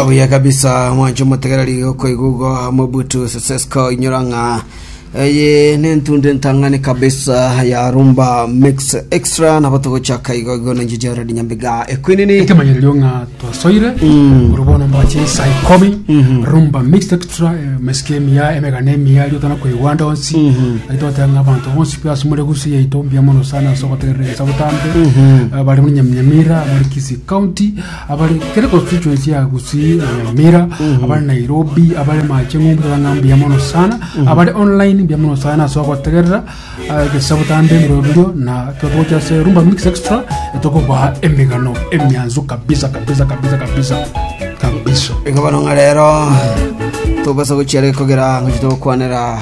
Obuya kabisa mwancho motegereri okoigugo mobutu sesesko inyora ng'a eye nentunde ntang'ani kabisa ya rumba mix extra nabo togochaka igo igo nenjeje redi nyambiga ekwinini ekemanyererio ng'a twasoire ore bono mbache isai komi rumba mixed extra eh, mesike emiya emegana emiya rio tana koigwa ande onsi aito batanga abanto bonsi pe ase more gusi yaito mbuya mono sana ase ogotegerera ensa botambe Eh, bari muri nyaminyamira muri kisi county abare kere constituency ya Gusii na Nyamira abare Nairobi abare mache ng'umbu tang'a mbuya mono sana abare online mbuya mono sana ase ogotegerera ah, egesabu tambe ebirobirio na totogocha ase Rumba Mix Extra etokobaha emegano emianzu kabisa kabisa kabisa kabisa kabisa Ekabano ng'a rero togasa gochiare kogera ngochia togokwanera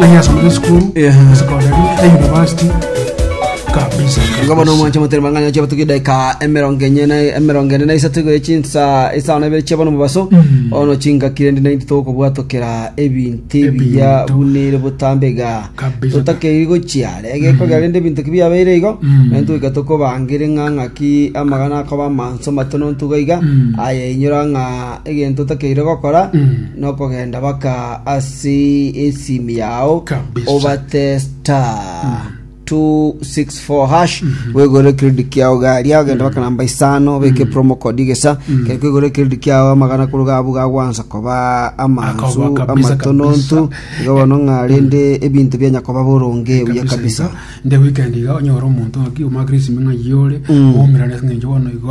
Nanyasomete school, Yeah. secondary, na university kabisa. Igo bono omwancha motari mang'anya chia batuki daika emerongo enye na emerongo ene na isato igo echinsa isano ibere chia bono mobaso ono chingakire ndi nainti tokobwatokera ebinti Ebinto. biya bunire botambe ga Kabisa. totakeiri gochia rege kogera rende ebinto ki biabeire igo Mm. nainto goika tokobangire ng'a ng'aki amagana akoba amanso matono ntuga iga Mm. aye inyora ng'a egento otakeire gokora nokogenda baka ase esimi yao Kabisa. obate star 264 hash wegore credit yao gari agenda baka namba isano beke promo code gesa kere kwegore credit yao amagana koruga abu gagwansa koba amanzu Akoba kabisa, amatonontu kabisa. iga bono ng'a rende ebinto bianya koba boronge buya kabisa nde weekend iga onyora omonto ng'aki omagire esimi ng'a yore omerane ng'encho bono igo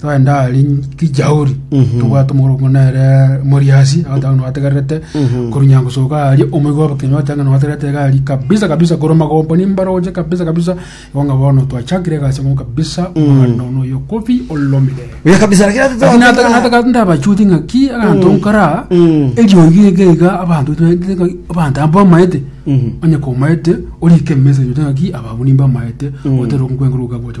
Twagenda ahari kijauri tobwate omoroko nere moriasi agotanga nwategererete korunya gosoka ahari omoigo obokenyi otanga nwategererete iga ahari kabisa kabisa korwa magombo nimbara oche kabisa kabisa igo ng'a bono twachakire egasi amo kabisa omoganda ono oyo kobi olomire Oya kabisa lakini ate Lakini twataka- nataka- nataka ndabachuti ng'a ki aganto nkara eriogi ege iga abanto twaetete ng'a abanto aba bamaete onye komaete orike emesa yote ng'a ki aba abwo nimbamaete otera okwenguru okagocha